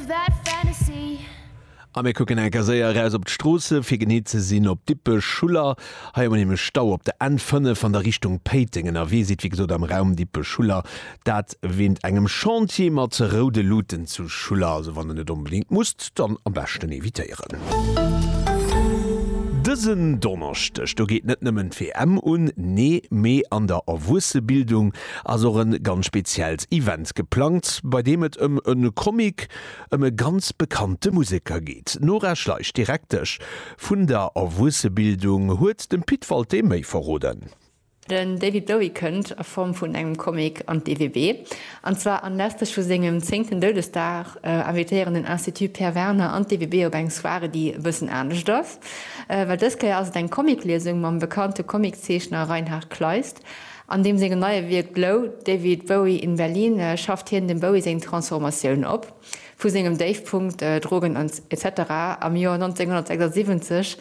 Bad Fantasy. A mir kucken enker séier eraus op d'Stroosse fir genee ze sinn op Dippech, Schuller. Hei hu mer nämlech Stau op der N 5 an der Richtung Péiteng. Ënnerwee sidd wéi gesot am Raum Dippech, Schuller, dat wéint engem Chantier mat roude Luuten zu Schuller. Also wann der net onbedéngt musst, dann am beschten evitéieren. Dësen Donneschdeg do geet net nëmmen d'WM un, nee, mee an der Erwuessebildung ass och e ganz speziellt Event geplangt, bei deem et ëm e Comic ëm e ganz bekannte Museker geet. D'Nora Schleich, Direktesch vun der Erwuessebildung, huet dem Pit Walté méi verroden. Den David Bowie kënnt a Form vun engem Comic an d'EWB, an zwar anlässlech vu sengem zéngten Doudesdag invitéieren den Institut Pierre Werner an d'EWB op eng Soirée, déi e bëssen anescht ass, well dës Kéier ass et eng Comicliesung mam bekannte Comiczeechner Reinhard Kleist. An deem sengem neie Wierk Blow, David Bowie in Berlin schafft hien dem Bowie seng Transformatioun op, vu sengem Déifpunkt, Drogen ans etc. Am Joer 1976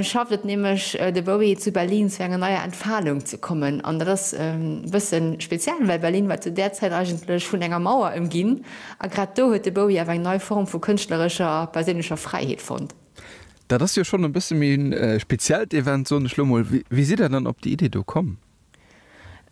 schafft et nämlech de Bowie zu Berlin zu enger neier Entfalung ze kommen. An dat ass e bësse speziell, well Berlin war zu där Zäit eigentlech vun enger Mauer ëmginn a grad do huet de Bowie awer eng nei Form vu kënschtlerescher a perséinlecher Fräiheet fonnt. Dat ass jo schonn e bësse méi en speziellt Event, soen ech elo mol. Wéi sidd Der dann op déi Idee do komm?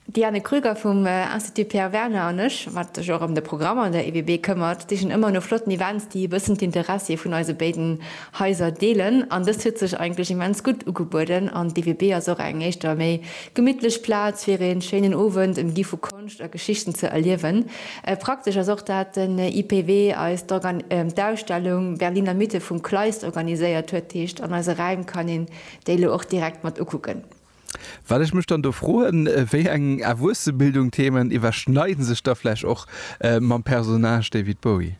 D'Diane Krüger vum Institut Pierre Werner an ech, wat sech och ëm de Programm an der EWB këmmert, sichen ëmmer no flotten Events, déi e bëssen d'Interessie vun eise béiden Haiser deelen. An dëst huet sech eigentlech immens gutt ugebueden. An d'EWB ass och eng éischter méi gemittlech Plaz, fir ee schéinen Owend ëmgi vu Konscht a Geschichten ze erliewen. Praktesch ass och, dat den IPW eis d'Ausstellung Berliner Mythe vum Kleist organiséiert huet, heescht an eise Räim kann een déi elo och direkt mat ukucken. Wat ech mech dann do froen, wéi eng Erwuessebildung-Themen iwwerschneiden sech da vläch och mam Personnage David Bowie?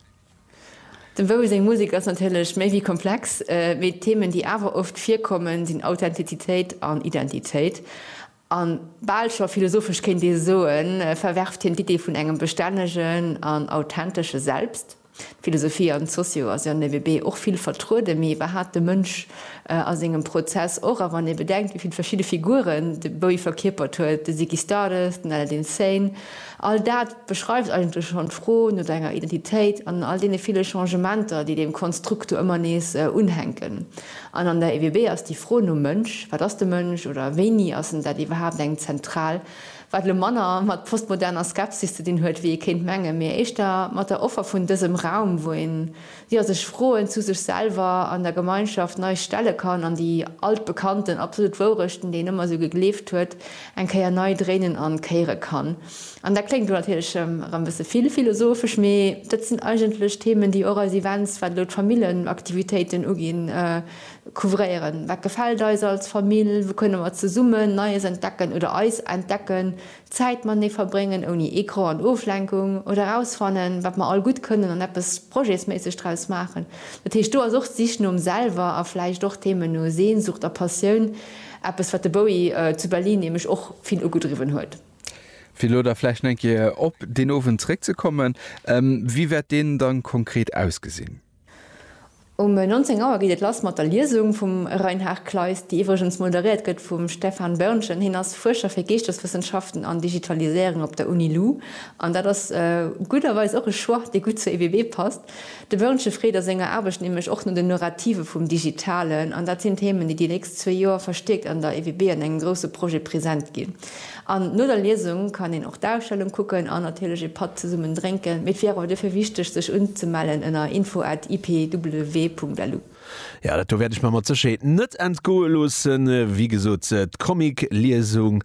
Dem Bowie seng Musek ass natierlech méi wéi komplex, mee d'Themen, déi awer oft virkommen, sinn Authentizitéit an Identitéit. A bal scho philosophesch kéint ee soen, verwerft hien d'Idee vun engem bestännegen an authentesche Selbst. D'Philosophie an d'Socio ass jo an de WB och vill vertrueden, mee iwwerhaapt de Mënsch a sengem Prozess och. A wann ee bedenkt, wéi vill verschidde Figuren de Bowie verkierpert huet, de Ziggy Stardust, den Aladdin Sane, all dat beschreift eigentlech schonn d'Fro no senger Identitéit an all deene ville Changementer, déi deem Konstrukt do ëmmer nees unhänken. An an der EWB ass déi Fro nom Mënsch, wat ass de Mënsch oder wéini ass en dat iwwerhaapt, eng zentral, wat elo manner mat postmoderner Skepsis ze dinn huet, wéi ee kéint mengen, mee éischter mat der Offer vun dësem Raum, wou een, jo, sech Froen zu sech selwer an der Gemeinschaft nei stelle kann an déi altbekannten absolut Wourechten, déi een ëmmer esou gegleeft huet, eng Kéier nei dréinen an kéiere kann. An dat kléngt elo natierlech erëm e bësse vill philosophesch, mee dat sinn eigentlech Themen, déi och eis Events, wat elo d'Familljenaktivitéiten uginn, couvréieren. Wat gefält eis als Famill? Wou kënne mer zesummen Neies entdecken oder eis entdecken, Zäit matenee verbréngen, ouni Ecran an Oflenkung, oder erausfannen, wat mer all gutt kënnen an eppes projetsméisseg draus maachen? Dat heescht, do ass och d'Sich nom Selwer a vläicht och d'Theme no Sehnsucht a Passioun eppes, wat de Bowie zu Berlin nämlech och vill ugedriwwen huet. Fir elo da vläicht nach eng Kéier op deen Owend zréckzekommen, Wéi wäert deen da konkret ausgesinn? Um 19 Auer geet et lass mat der Liesung vum Reinhard Kleist, déi iwwregens moderéiert gëtt vum Stefan Börnchen. Hien ass Fuerscher fir Geeschteswëssenschaften an Digitaliséierung op der Uni Lu. An dat ass gudderweis och e Choix, dee gutt zur EBB passt. De Börnchen freet a senger Aarbecht nämlech och no den Nurrative vum Digitalen. An dat sinn Themen, déi déi nächst zwee Joer verstiärkt an der EBB an engem grousse Projet present ginn. An no der Liesung kann een och d'Ausstellung kucken an natierlech ee Patt zesummen drénken. Mee et wier awer duerfir wichteg sech unzemellen ënner info at ipw.lu. Jo, dat do wäert ech mer mat Sécherheet net entgoe loossen. Wéi gesot, d'Comic-Liesung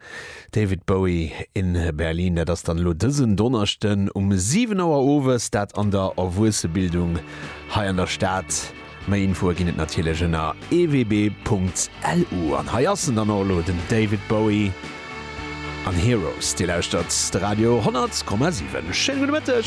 David Bowie in Berlin, dat ass dann elo dësen Donneschden um 7 Auer owes, dat an der Erwuessebildung hei an der Stad. Méi Infoe ginn et natierlech ënner ewb.lu. An hei ass en dann och elo, den David Bowie an Heroes. Dir lauschtert de Radio 10,7. Schéine gudde Mëtteg.